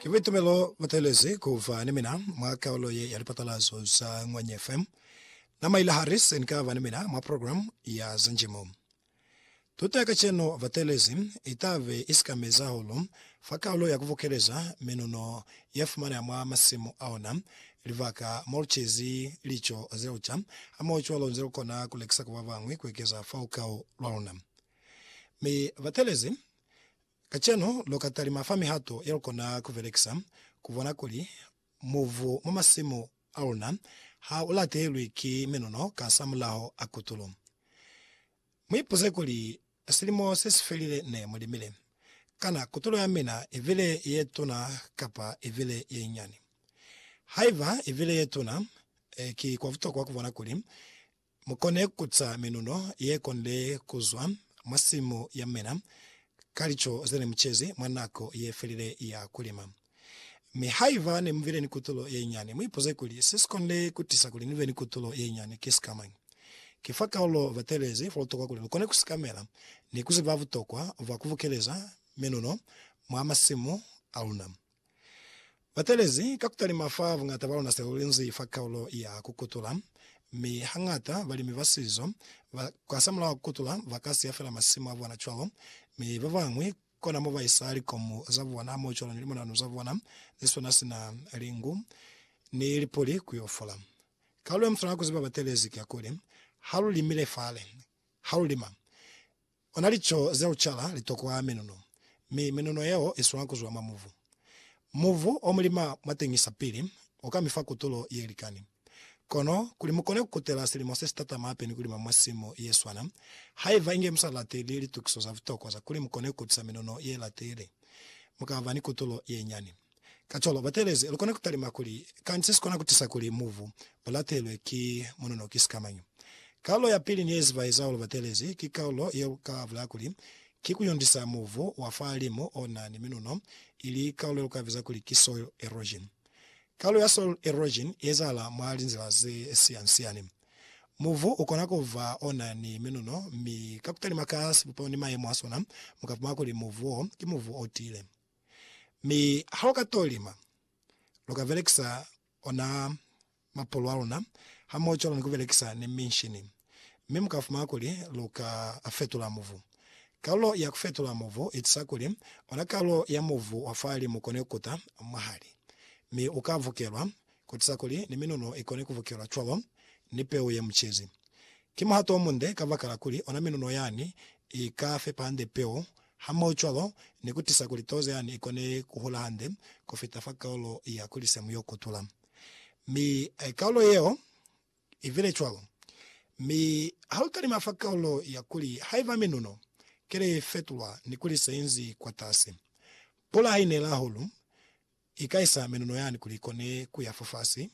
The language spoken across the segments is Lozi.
Ki buitumelo bu teelezi ku ba ni mina mwa kaulo ye ya lipatalazo za Ñwanyi FM. Na maile hali se ni ka ba ni mina mwa program ya za njimo. Tuto ya kacenu bateelezi i ta be i sikamezi hahulu fa kaulo ya ku bukeleza minuno ye fumaneha mwa masimu a ona, libaka mo lu cezi lico ze lu ca, hamohocwalo nze lu kona ku lekisa ku ba bañwi ku ekeza fa lukau lwa luna. Mi bateelezi Kacenu, lu ka talima fa mihato ye lu kona ku belekisa ku bona kuli mubu mwa masimu a luna ha u latehelwi ki minono kasamulaho a kutulo. Mu ipuze kuli, Silimo se si felile ne mu limile. Kana kutulo ya mina i bile ye tuna kapa i bile ye nyinyani? Haiba i bile ye tuna, ki kwa butokwa ku bona kuli Mu kone ku ca minuno ye konile ku zwa mwa simu ya mina ka lico ze ne mu cezi mwa nako ye felile ya ku lima. Mi haiba ne mu bile ni kutulo ye nyani, mu ipuze kuli, Se si konile ku tisa kuli ni be ni kutulo ye nyani ki sikamañi? Ki fa kaulo batelezi fa butokwa kuli lu kone ku sikamela ni ku ziba butokwa bwa ku bukeleza minuno mwa masimu a luna. Ba telezi ka ku talima fa buñata ba luna se lu linzi fa kaulo ya ku kutula, mi hañata balimi ba sizo ba kasamulaho ku kutula ba ka siya fela masimu a bona cwalo, mi ba bañwi kona mo ba isa likomu za bona mo cwalo ni limonanu za bona ze swana sina lingu ni lipuli ku yo fola. Kaulo ye mu swanela ku ziba batelezi ki ya kuli, Ha lu limile fale, ha lu lima, Ona lico ze ucala litokwaa menuno, mi menuno yeo iswaa kuzwa mwa mubu. Mubu omulima mwateñisa pili uka mifa kutulo yelikani. Kono kuli mukone kukutela silimo sesitatama hape ni kulima mwa simu yeswana, haiba inge musa lateli litukiso za butokwa za kuli mukone kukutisa menuno yelateli, mukaba ni kutulo yenyani. Kacwalo, batelezi lukona kutalima kuli, Kanti sesikona kutisa kuli mubu ulatelwe ki munono ki sikamañi? Kaulo yapili neyezibaeza hahulu batelezi ki kaulo yeluka bulaya kuli, Ki kuyundisa mubu wa fahalimu ona ni minuno, ili kaulo yeluka biza kuli ki soil erosion. Kaulo ya soil erosion iezahala mwa linzila zesiyansiyani. Mubu ukona kuba ona ni minuno, mi ka kutalima ka sibupego ni mayemo asona, mukapuma kuli mubu wo ki mubu otiile. Mi ha lu ka to lima, lu ka belekisa ona mapulu a luna hamoho cwalo ni ku belekisa ni minshini, mi mu ka fumana kuli lu ka a fetula mubu. Kalulo ya ku fetula mubu i tusa kuli ona kalulo ya mubu wa fali mu kone ku kuta mwahali, mi u ka vukelwa, ku tusa kuli ni minunu i kone ku vukelwa cwalo ni peu ye mu cezi. Ki muhato o munde kabakala kuli ona minunu yani i ka fepa hande peu Hamohocwalo, ni ku tisa kuli tozo yani i kone ku hula hande ku fita fa kaulo ya kuli semu yo kutula. Mi kaulo yeo i bile cwalo. Mi ha lu talima fa kaulo ya kuli haiba minuno kele ye fetulwa ni kuli se inzi kwatasi, pula ha i nela hahulu, I ka isa menuno yani kuli i kone ku ya fofasi.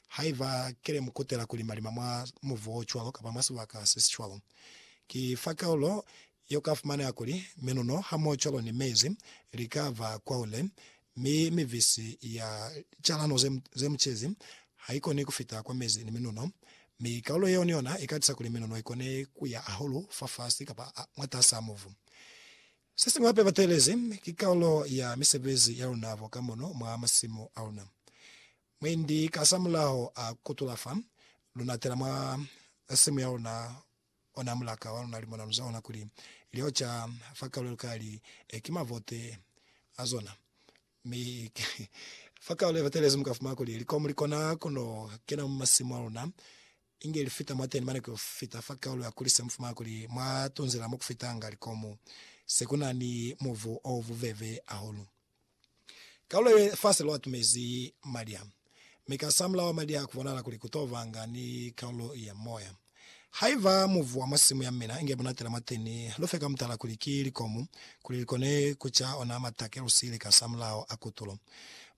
Haiba ki le mu kutela ku lima-lima mwa mubu o cwalo kapa mwa sibaka se si cwalo, ki fa kaulo ye u ka fumaneha kuli menuno hamohocwalo ni mezi li ka ba kwahule, mi mibisi ya calano ze mu cezi ha i koni ku fita kwa mezi ni menuno, mi kaulo yeo ni yona i ka tisa kuli menuno i kone ku ya hahulu fafasi kapa mwatas'a mubu. Sesiñwi hape bateelezi ki karolo ya misebezi yaluna bo ka mono mwa masimu aluna. Mwendi kasamulaho a kutula fa luna tela mwa simu yaluna, ona mulaka waluna limona luza ona kuli lioca fa karolo yelukali ki mavote azona. Mi fa karolo ye batelezi mukafumana kuli likomu likona kuno kena mwa masimu aluna. Inge li fita mwateni mane ku fita fa kaulu ya kuli se mu fumana kuli mwa tunzela mo ku fitanga likomu se ku na ni muvu o bubebe ahulu. Kaulu ye fase lwa tumezi maliha, mi ka samula wa maliha ku bonala kuli ku to banga ni kaulu ya moya. Haiba muvu wa mwa simu ya mina inge bunatela mwateni, lu fe ka mutala kuli ki likomu kuli li kone ku ca ona matake lu siile ka samulaho a kutulo.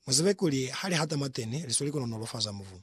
Mu zibe kuli ha li hata mwateni, li sweli ku nonolofaza muvu.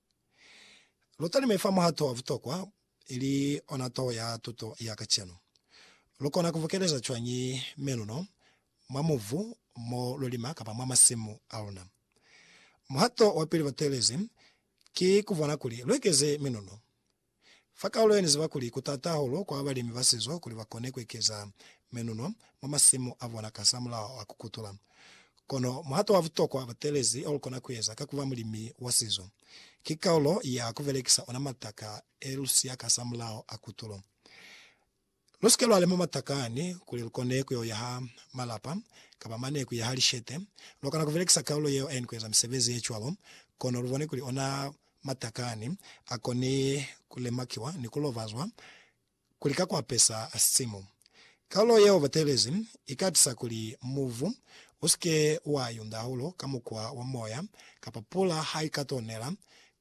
Lu talime fa muh'a toho wa butokwa, ili ona toho ya tuto ya kacenu. Lu kona ku bukeleza cwañi meluno mwa mubu mo lu lima kapa mwa masimu a luna? Muhato wa pili bateelezi ki ku bona kuli lu ekeze meluno. Fa kaulo ye ni ziba kuli ku t'ata hahulu kwa balimi ba sizo kuli ba kone ku ekeza menuno mwa masimu a bona kasamulaho wa ku kutula. Kono muhato wa butokwa batelezi o lu kona ku eza ka ku ba mulimi wa sizo, ki kaulo ya ku belekisa ona mataka e lu siya kasamulaho a kutulo. Lu si ke lwa lema matakani kuli lu kone ku yo yaha malapa kapa mane ku yaha lishete. Lwa kona ku belekisa kaulo yeo aini ku eza misebezi ye cwalo, kono lu bone kuli ona matakani a koni ku lemakiwa ni ku lovazwa kuli ka ku apesa sisimu. Kaulo yeo batelezi i ka tisa kuli mubu u si ke wa yunda hahulu ka mukwa wa moya kapa pula ha i ka to nela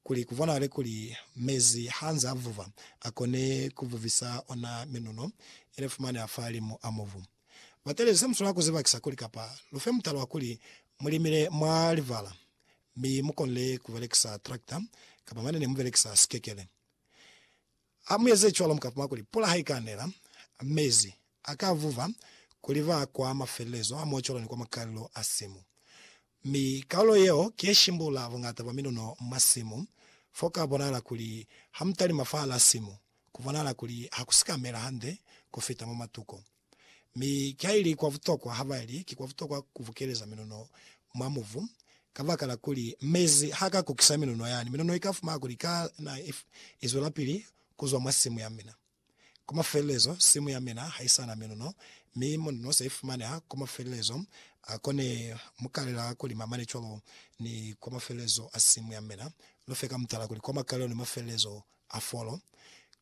kuli kubonahale kuli mezi hanze avuva akone kuvuvisa ona minuno ilefumaneha fahalimu amubu. Batelezi semuswanela kuzibakisa kuli kapa lufe mutala wakuli mulimile mwa livala mi mukonile kubelekisa tractor kapa mane nemubelekisa sikekele. Ha mu eze cwalo, mu ka puma kuli pula ha i ka nela, mezi a ka vuva, ku liva kwa mafelelezo a mocolo ni kwa makalelo a simu. Mi kalulo yeo ki ye shimbula buñata bwa minuno mwa simu, fo ka bonahala kuli ha mu talima fahal'a simu, ku bonahala kuli ha ku si ka mela hande ku fita mwa matuko. Mi kaili kwa butokwa habaili ki kwa butokwa kubukeleza minuno mwa mubu, kabakala kuli mezi haka kukisa minuno yani, minuno ika fumana kuli ka na izwelapili kuzwa mwa simu ya mina. Kwa mafelelezo, simu ya mina haisana minuno, mi minuno se ifumaneha kwa mafelelezo a ko ne mukalela kuli mamane cwalo ni kwa mafelelezo a simu ya mina. Lufe ka mutala kuli kwa makalelo ni mafelelezo a folo,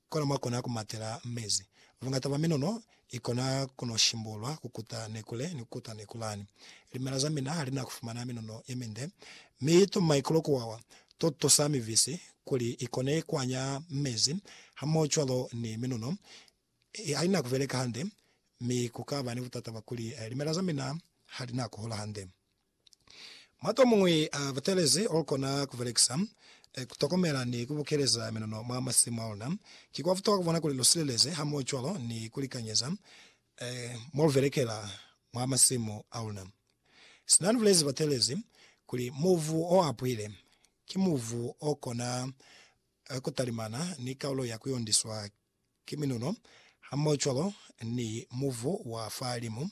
kona mwa kona ku matela mezi. Bungata bwa minono i kona ku no shimbulwa ku kuta nekule ni ku kuta nekulani. Limela za mina ha li na ku fumana minono ye minde, mi to maikulo ku wawa, to tusa mivisi kuli i kone ku anya mezi hamohocwalo ni minono ha i na ku beleka hande, mi ku ka ba ni butata bwa kuli limela za mina ha li na ku hola hande. Mwa tomuñwi a butelezi olukona kubelekisa, kutokomela ni kubukeleza minono mwa masimu aluna. Ki kwa butokwa kubona kuli lusileleze hamoho cwalo ni kulikanyeza molubelekela mwa masimu aluna. Sina nibulezi batelezi kuli mubu oapwile ki mubu okona kutalimana ni kaulo ya kuyondiswa Ki minuno, hamohocwalo ni muvu wa fahalimu,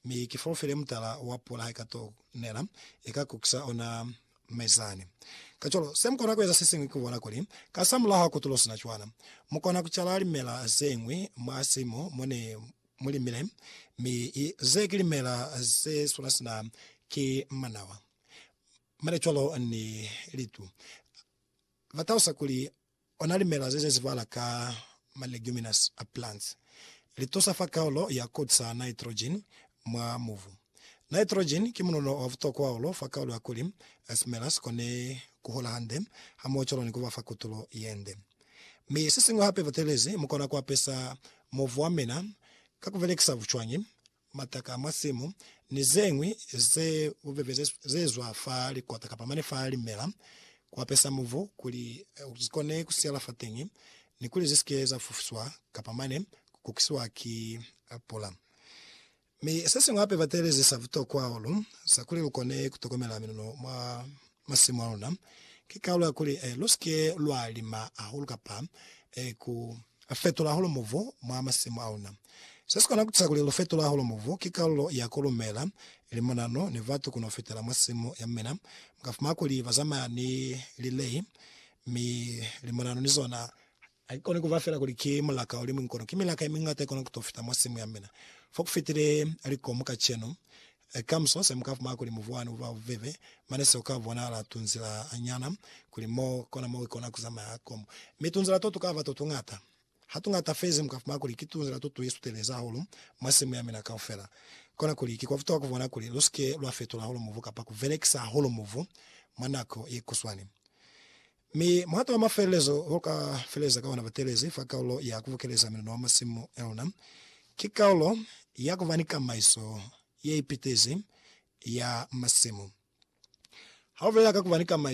mi ki folofile mutala wa pula haika to nela, ika kukisa ona mezani. Kacwalo, se mukona kueza sesiñwi ki kubona kuli, ka sa mulaho ha kutulo sina cwana, mukona kucala limela zeñwi mwa simu mone mulimile, mi ze ki limela ze swana sina ki manawa, mane cwalo ni litu. Ba talusa kuli Ona limela ze ze zibala ka ma leguminous a plants. Li tusa fa kaulo ya kut sa nitrogen mwa mubu. Nitrogen ki munono wa butokwa hahulu fa kaulo ya kuli simela si kone ku hola hande hamohocwalo ni ku ba fa kutulo ye nde. Mi se siñwi hape, butelezi mu kona ku apesa mubu wa mina ka ku belekisa bucwañi mataka a mwa simu, ni ze ñwi ze bubebe ze ze zwa fa likota kapa mane fa limela, ku apesa mubu kuli zi kone ku siyala fateñi ni kuli zi si ke za fufuswa kapa mane ku kukisiwa ki pula. Mi se siñwi hape ba teelezisa butokwa hahulu za kuli lu kone ku tokomela miluno mwa Masimu a luna ki kalu ya kuli lu si ke lwa lima hahulu kapa ku fetula hahulu mubu mwa masimu a luna. Se si kona ku tusa kuli lu fetule hahulu mubu ki kalulo ya ku lumela limonano ni batu ku no fetela mwa simu ya mina. Mu ka fumana kuli ba zamaya ni lilei, mi limonano ni zona Ha ki koni kuba fela kuli ki mulaka o liñwi kono ki milaka ye miñata ye kona ku to fita mwa simu ya mina. Fo ku fitile likomu kacenu. Kamuso se mu ka fumana kuli mubu wani u ba bubebe, mane seo ka bonahala tunzila nyana kuli mo kona mo i kona ku zamaya komu. Mi tunzila to tu ka ba to tuñata. Ha tuñata fezi mu ka fumana kuli ki tunzila to tu isutelezi hahulu mwa simu ya mina kaufela. Kona kuli ki kwa butokwa ku bona kuli lu si ke lwa fetula hahulu mubu kapa ku belekisa hahulu mubu mwa nako ye kuswani. Mi muhato wa mafelelezo o ka feleza ka ona batelezi fa kaulo ya kubukeleza miluno wa masimu aluna, ki kaulo ya kuba ni kamaiso yeipitezi ya masimu. Haubulela ka kuba ni kamaiso,